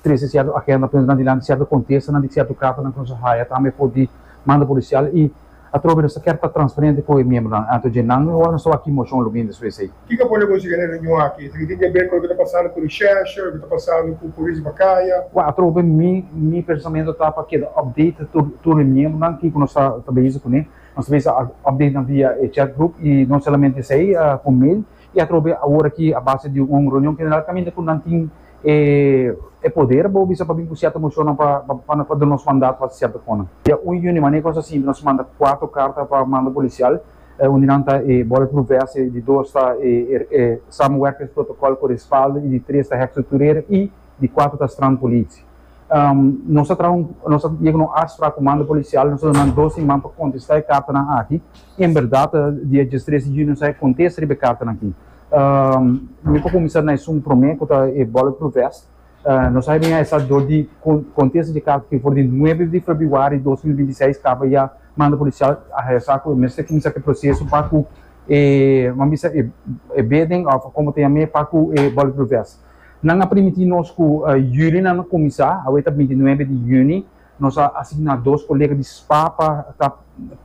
Trece sierto agenda pone nan dilanti sierto contestanan di sierto cartanan cu nos a haya tambe for di manda policial y atrobe nos ta kier ta transparente cu e miembronan anto dje nan e ora nos ta wak ki mocion lo mintras cu esey. Kiko por negocio den e reunion aki? Esaki tin ke ber cu loke ta pasando cu recherche, loke ta pasando cu Polis Bacaya? Wak atrobe mi mi pensamentu ta pa keda update tur tur e miembronan kiko nos ta ta bezig cune. Nos ta bezig update nan via e chat group y no solamente esey cu mail. y atrobe awor aki a base di un reunion general caminda cu nan tin e e poder bo bisa pa bin cu cierto mocionnan pa pa pa duna nos mandato pa haci cierto conan. Dia un juni manera cu nos a sinti nos manda cuatro carta pa mando policial un di nan ta e bullet proof vest y di dos ta e e samenwerkings protocol cu respaldo y di tres ta hekstructureren y di cuatro ta strand politie. Um, nos a traha un, nos a yega un afspraak ku komando polisial, nos a duna nan dos siman pa kontestá e kartanan aki. I en bèrdat, di e dies trese junio sa e kontesta riba e kartanan aki. Um, mi por kuminsá na esun promé, ku ta e bulletproof vest. Uh, nos a bin a esá dor di kon, kontesta dje karta aki for di nuebe di februari dos mil binti seis kaba ya mando polisial a hesá ku e mester kuminsá ku e proseso pa ku e, nan bisa, e, e bidding òf komo ta yam'é pa ku e bulletproof vest. Nan a primiti nos ku Julinan a kuminsá, awor e ta binti nuebe di Juni. Nos a asigná dos kolega di spa pa ta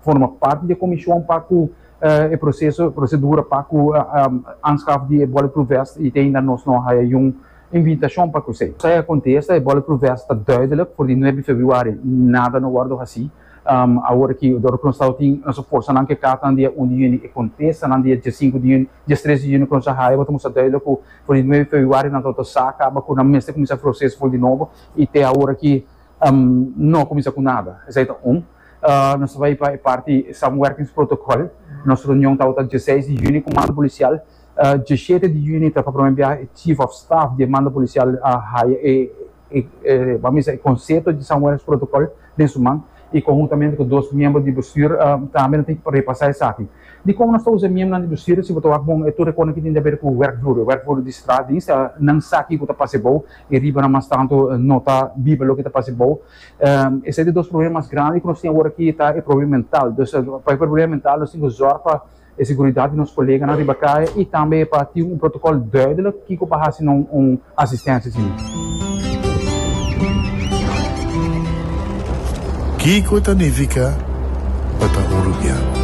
forma parti di e komishon pa ku e proseso, prosedura pa ku aanskaf di e bulletproof vest i te ainda nos no haya gun invitashon pa kusei. Esei a kontesta, E bulletproof vest ta duidelik, for di nuebe februari nada no wòrdu hasí. Awor aki Dor Knorsaal tin na su forsanan ke kata nan di dia un di yüni, e kontesanan di dia dies sinku di yüni, dies tres di yüni Knorsaal haya bo ta mustra dùidelik ku for di nuebe februario nan tabata sa kaba ku nan mester kuminsá e proseso for di nobo i te awor aki no kuminsá ku nada. Esei ta un. Nos ta bai pa e parti Samenwerkingsprotokòl. Nos reunion tabata dies seis di yüni ku mando polisial. Dies shete di yüni ta pa prome biaha e Chief of Staff di e mando polisial haya e e pa misa e konseto di San Juanes Protokòl den su man i konhuntamente ku dos miembro di bestür tambe nan tin ku repasá esaki. Dikon nos ta usa e miembronan di bestür? Si bo ta wak bon e tur e konan ku tin di haber ku wèrkvloer, e wèrkvloer di straatdienst, nan sa kiko ta pasa ebou i riba nan mas tantu no ta biba loke ta pasa ebou. Esei ta dos problema mas grandi ku nos tin awor aki ta e problema mental. Dus pa e problema mental nos tin ku zòrg pa e seguridat di nos koleganan riba kae i tambe pa tin un protokòl duidelik kiko pa hasi no un asistensia asina. Kiko ta nifiká pa ta uruguiano?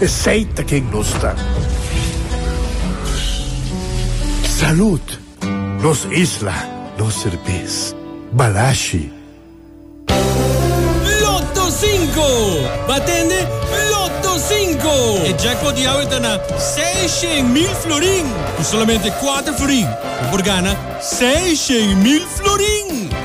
Esey ta ken nos ta. Salud! Nos isla, nos serbes. Balashi! Lotto Cinco! Bo a tende, Lotto Cinco! E jackpot di awe ta na seis shen mil florin! Ku solamente kuater florin bo por gana seis shen mil florin!